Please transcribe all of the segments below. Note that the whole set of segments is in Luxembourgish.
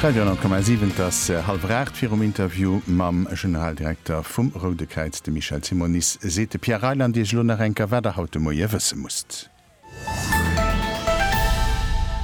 Radio 10,7 Et ass hallwer 8. Virum Interview mam Generaldirekter vum Roude Kräiz, dem Michel Simonis, seet de Pierre Reyland Iech elo nach eng Kéier, wat Der haut de Moie wësse musst.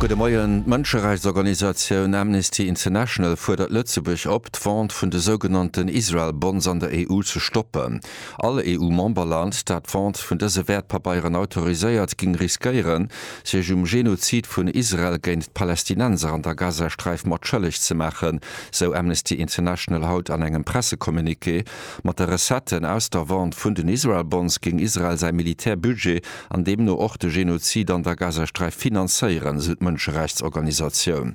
Gudde Moien. D'Mënscherechtsorganisatioun Amnesty International fuerdert Lëtzebuerg op, d'Vente vun de sougenannten Israel Bonds an der EU ze stoppen. All EU-Memberland, dat d'Vente vun dëse Wäertpabeieren autoriséiert, géing riskéieren, sech um Genozid vun Israel géint d'Palästinenser an der Gazasträif mat schëlleg ze maachen, sou Amnesty International haut an engem Pressecommuniqué. Mat de Recetten aus der Vente vun den Israel Bonds géing Israel säi Militärbudget an deemno och de Genozid an der Gazasträif finanzéieren, sou d'Mënscherechtsorganisatioun.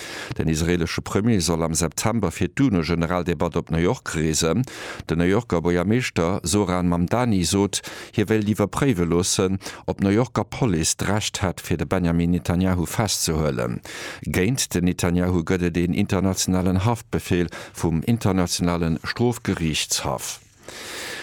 Den israeelesche Premier soll am September fir d'UNO-Generaldebatt op New York reesen. Den New Yorker Buergermeeschter Zohran Mamdani sot, hie wéilt iwwerpréiwe loossen, ob d'New Yorker Police d'Recht hätt, fir de Benjamin Netanyahu festzehuelen. Géint den Netanyahu gëtt et een internationalen Haftbefeel vum Internationale Strofgeriichtshaff.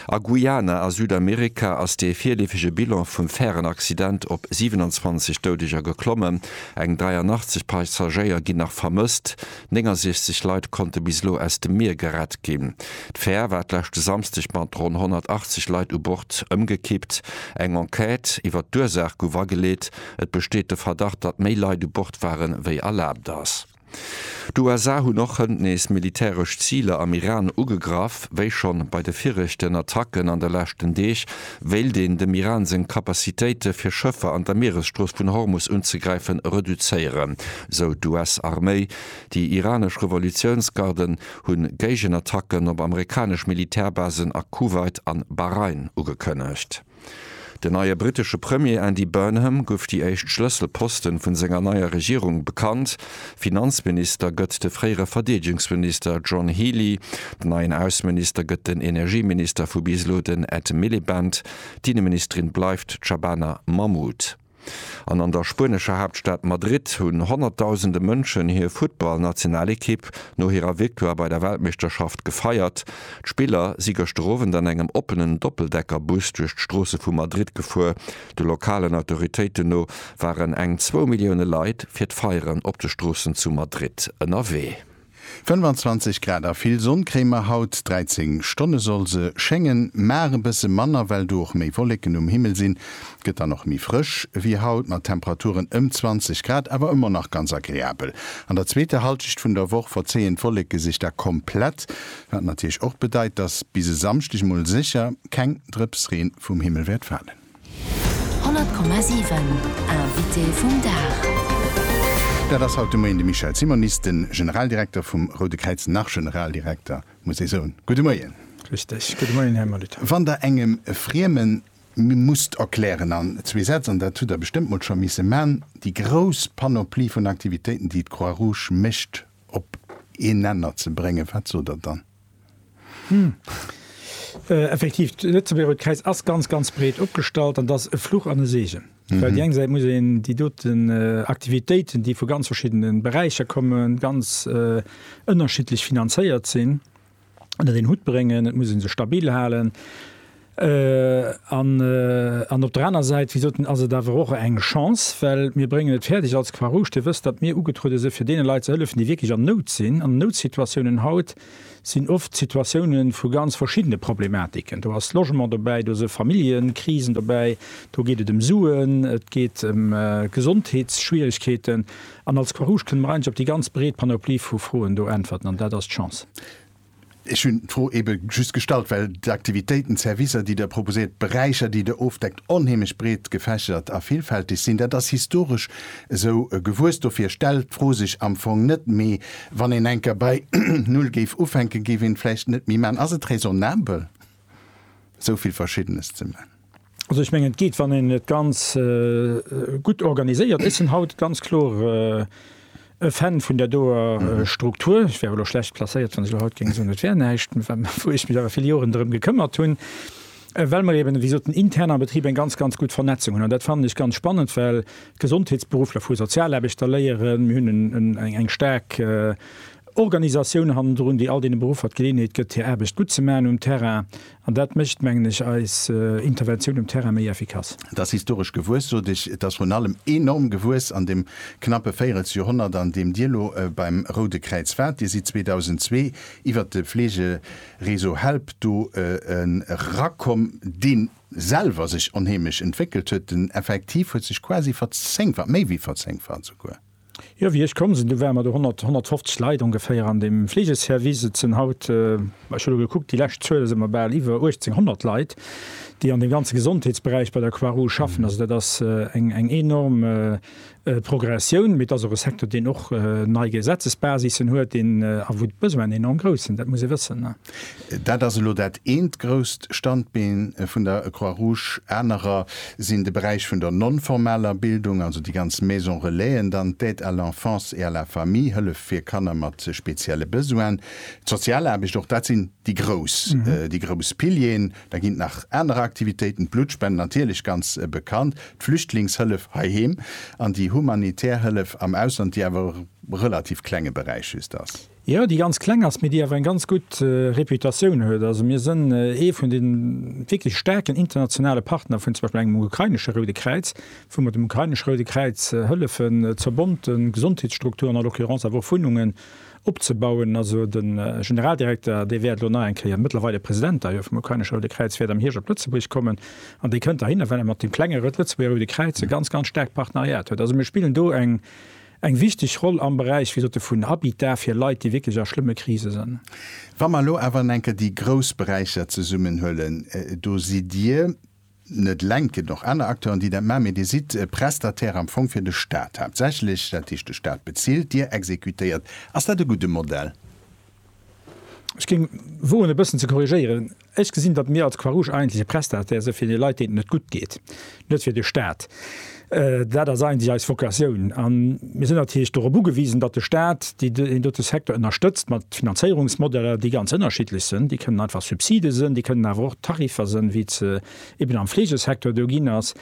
A Guyana a Südamerika ass dee virleefege Bilan vum Färenaccident op 27 Doudeger geklommen. Eng 83 Passagéier ginn nach vermësst. 69 Leit konnte bis elo aus dem Mier gerett ginn. D'Fär war d'leschte Samsdeg mat ronn 180 Leit u Bord ëmgekippt. Eng Enquête iwwer d'Ursaach gouf ageleet. Et besteet de Verdacht, datt méi Leit u Bord waren, wéi erlaabt ass. D'USA hunn och hënt nees militäresch Ziler am Iran ugegraff. Wéi schonn bei de viregten Attacken an de leschten Deeg, wéilt een dem Iran seng Kapazitéite fir Schëffer an der Mieresstrooss vun Hormus unzegräifen, reduzéieren, sou d'US-Arméi. Déi iranesch Revolutiounsgarden hunn Géigenattacken op amerikanesch Militärbasen a Kuwait an Bahrain ugekënnegt. Den neie brittesche Premier Andy Burnham guff déi éischt Schlësselposten vun senger neier Regierung bekannt. Finanzminister gëtt de fréiere Verdeedegungsminister John Healey, den neien Ausseminister gëtt den Energieminister vu bis elo den Ed Miliband, d'Inneministerin bleift d'Shabana Mahmood. An an der spuenescher Haaptstad Madrid hunn honnertdausende Mënschen hir Futtballnationalekipp no hirer Victoire bei der Weltmeeschterschaft gefeiert. D'Spiller si gëschter Owend an engem oppenen Doppeldeckerbus duerch d'Stroosse vu Madrid gefuer. De lokalen Autoritéiten no waren eng zwou Millioune Leit fir d'Feieren op de Stroossen zu Madrid ënnerwee. 25 Grad a vill Sonn kréie mer haut. 13 Stonne soll se schéngen, mar e bësse manner, well do och méi Wolleken um Himmel sinn. Gëtt dann och méi frësch wéi haut, mat Temperaturen ëm 20 Grad, awer ëmmer nach ganz agreabel. An der zweeter Hallschicht vun der Woch verzéien d'Wolleke sech da komplett, wat natierlech och bedeit, dass bis e Samschdeg mol sécher keng Drëpsreen vum Himmel wäert falen. 100,7 Invité vum Dag. Dat ass haut de Moien de Michel Simonis, de Generaldirekter vum Roude Kräiz, nach Generaldirekter, muss ee soen. Gudde Moien. Richtig. Gudde Moien, Här Molitor. Wann Der engem Frieme musst erklären an zwee Sätz, an dat hutt Der bestëmmt mol scho misse man, déi grouss Panoplie vun Aktivitéiten, déi d'Croix-Rouge mécht, op een Nenner ze bréngen, wat sot Der dann? Effektiv, d'Lëtzebuerger Rout-Kräiz ass ganz, ganz breet opgestallt an dat ass e Fluch an e Seegen. Well déi eng Säit muss een déi doten Aktivitéiten, déi vu ganz verschiddene Beräicher kommen, ganz ënnerschiddlech finanzéiert sinn, ënnert een Hutt bréngen, et muss ee se stabil halen. An op der aner Säit, wéi gesot, ass et awer och eng Chance, well mir bréngen et fäerdeg als Croix Rouge, Dir wësst, datt mir ugetruede sinn, fir deene Leit ze hëllefen, déi wierklech an Nout sinn. An Noutsituatiounen haut sinn oft Situatioune vu ganz verschiddene Problematiken. Do ass Logement dobäi, do si Familljekrisen dobäi, do geet et ëm Suen, et geet ëm Gesondheetsschwierigkeeten. An als Croix Rouge kënne mer eigentlech op déi ganz breet Panoplie vu Froen do äntwerten. An dat ass d'Chance. Ech hunn d'Fro ebe just gestallt, well d'Aktivitéiten, d'Servicer, déi Der proposéiert, d'Beräicher, déi Der ofdeckt, onheemlech breet gefächert a villfältig sinn. Dat ass historesch esou gewuess. Dofir stellt d'Fro sech am Fong net méi. Wann een enker bei Null géif ufänken, géif een vläicht net méi maachen. Ass et raisonnabel? esou vill Verschiddenes ze man. Also ech mengen et geet wann een et ganz gutt organiséiert. Ech sinn haut ganz kloer e Fan vun der doer Struktur. Ech wär elo schlecht placéiert wann ech elo haut géing soen et wär näischt, wou ech mech awer vill Joren drëm gekëmmert hunn, well mer eben ewéi gesot den intern am Betrib eng ganz ganz gutt Vernetzung hunn. An dat fannen ech ganz spannend, well Gesondheetsberuffler vu Sozialaarbechter léieren. Mir hunn eng staark Organisatioun hannendrun, déi all deene Beruffer d'Geleeënheet gëtt, hir Aarbecht gutt ze maachen um Terrain. An dat mécht, mengen ech, eis Interventioun um Terrain méi effikass. Et ass historesch gewuess, sot ech. Et ass vrun allem enorm gewuess an deem knappe Véirelsjorhonnert, an deem Dir elo beim Roude Kräiz waart. Dir sidd 2002 iwwert de Fleegereseau HELP do erakomm, dee selwer sech onheemlech entwéckelt huet. Den Effektiv huet sech quasi verzéngfacht, méi wéi verzéngfacht esouguer. Jo, wéi ech komm sinn, du ware mer do 100, 150 Leit ongeféier an deem Fleegeservice. Et sinn haut, ech hu lo gekuckt, déi lescht Zuele si mer bal iwwer 1.800 Leit, déi an deem ganze Gesondheetsberäich bei der Croix-Rouge schaffen. Also dat ass eng enorm Progressioun, mee et ass och e Secteur, deen och nei Gesetzesbasissen huet, deen a wou d'Besoinen enorm grouss sinn, dat muss ee wëssen. Dat ass elo dat eent grousst Standbeen vun der Croix Rouge. Anerer sinn de Beräich vun der non-formaler Bildung, also déi ganz Maisons Relaisen, dann d'Aide à l'enfance et à la famille, Hëllef fir Kanner mat spezielle Besoinen, d'Sozialaarbecht. Och dat sinn déi grouss, déi grouss Pilieren. Da ginn et nach aner Aktivitéiten, d'Bluttspenden natierlech, ganz bekannt, d'Flüchtlingshëllef heiheem an déi humanitär Hëllef am Ausland, déi awer e relativ klenge Beräich just ass. Jo, déi ganz kleng ass, mee déi awer eng ganz gutt Reputatioun huet. Also mir sënn ee vun de wierklech staarken internationale Partner vun zum Beispill engem ukrainesche Roude Kräiz, wou mer dem ukrainesche Roude Kräiz hëllefen, zerbonnte Gesondheetsstrukturen, à l'occurrence awer och Wunnungen, opzebauen. Also de Generaldirekter, dee wäert elo nach eng Kéier, mëttlerweile President da jo vum ukrainesche Roude Kräiz, wäert am Hierscht op Lëtzebuerg kommen an dee kënnt da hinner, well e mat deem klengere Lëtzebuerger Roude Kräiz e ganz, ganz staarkt Partneriat huet. Also mir spillen do eng Eng wichteg Roll am Beräich, wéi sote, vun Habitat fir Leit, déi wierklech a schlëmme Krise sënn. Wa mer elo awer enker déi grouss Beräicher zesummenhuelen, do sidd Dir net eleng, et ginn och aner Acteuren, déi dat maachen, mee Dir sidd Prestataire am Fong fir de Stat haaptsächlech. Dat heescht, de Stat bezilt, Dir exekutéiert. Ass dat e gudde Modell? Ech géing woen e bëssen ze korrigéieren, Ech gesinn, datt mir als Croix Rouge eigentlech e Prestataire si fir de Leit deenen et net gutt geet, net fir de Staat. Dat ass eigentlech eis Vocatioun a mir sinn natierlech dorop ugewisen, datt de Staat deen dote Secteur ënnerstëtzt mat Finanzéierungsmodeller déi ganz ënnerschiddlech sinn. Déi kënnen einfach Subside sinn, déi kënnen awer och Tariffer sinn, wéi et se eben am Fleegesecteur do ginn ass.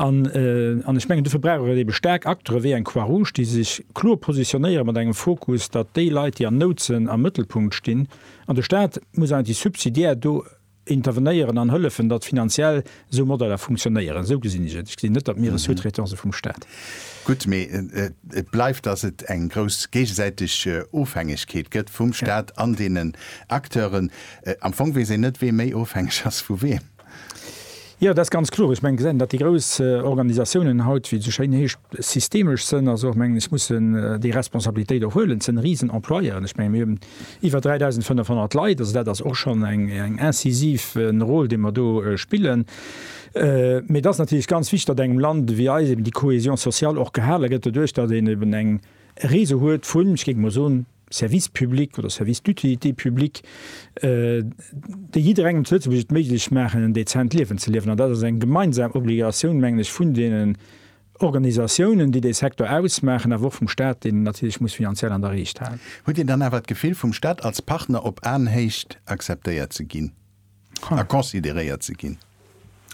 An ech mengen, dofir brauch et eebe staark Acteure wéi eng Croix-Rouge, déi sech kloer positionéieren, mat engem Fokus, datt déi Leit, déi an Nout sënn, am Mëttelpunkt stinn. An de Staat muss eigentlech subsidiär do intervenéieren an hëllefen, datt finanziell esou Modeller funktionéieren. Esou gesinn ech et. Ech gesinn net, datt mir e Sous-traitant si vum Staat. Gutt, mee et bleift, datt et eng grouss géigesäiteg Ofhängegkeet gëtt vum Staat an deenen Acteuren. Am Fong weess een net, wee méi ofhängeg ass vu weem. Jo, dat ass ganz kloer. Ech mengen, gesäit een, datt déi grouss Organisatiounen haut, wéi et esou schéin heescht, systemesch sënn, also och mengen, ech mussen déi Responsabilitéit och huelen. Et sinn Risenemployeuren. Ech mengen, mir hunn iwwer 3.500 Leit, also dat ass och schonn eng incisiv Rôle, déi mer do spillen. Mee et ass natierlech ganz wichtig, datt engem Land wéi eisem déi Cohésion sociale och gehale gëtt, doduerch datt een eben eng Réseau huet vun, ech géif emol soen, Service public oder Service d'utilité publique, déi jidderengem zu Lëtzebuerg et méiglech maachen, en dezent Liewen ze liewen. An dat ass eng gemeinsam Obligatioun, mengen ech, vun deenen Organisatiounen, déi dee Secteur ausmaachen, awer och vum Stat, deen en natierlech muss finanziell an der Riicht halen. Hutt Dir dann awer d'Gefill, vum Stat als Partner op Aenhéicht akzeptéiert ze ginn? consideréiert ze ginn.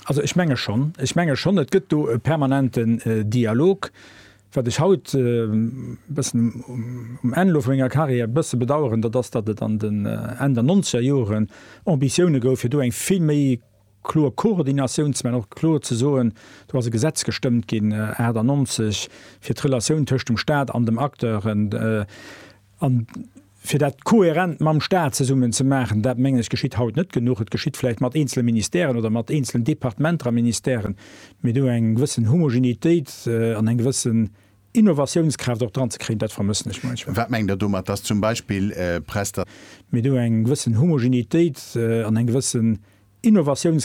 Also ech menge schonn, ech menge schonn, et gëtt do e permanenten Dialog. Wat ech haut e bëssen um Enn elo vu menger Karriär e bësse bedaueren, dat ass, datt et an den Enn der nonzeger Joren Ambitioune gouf, fir do eng vill méi kloer Koordinatioun ze maachen, och kloer ze soen, do ass e Gesetz gestëmmt ginn 98 fir d'Relatioun tëscht dem Stat an dem Acteur. An fir dat kohärent mam Stat zesummen ze maachen, dat, mengen ech, geschitt haut net genuch. Et geschitt vläicht mat eenzele Ministèren oder mat eenzelen Departementer a Ministèren, mee do eng gewëssen Homogenitéit an eng gewëssen Innovatiounskraaft och dran ze kréien, dat vermëssen ech munchmol. Wat mengt Der domat, dass zum Beispill Presta. Mee do eng gewëssen Homogenitéit an eng gewëssen Innovatiounskraaft.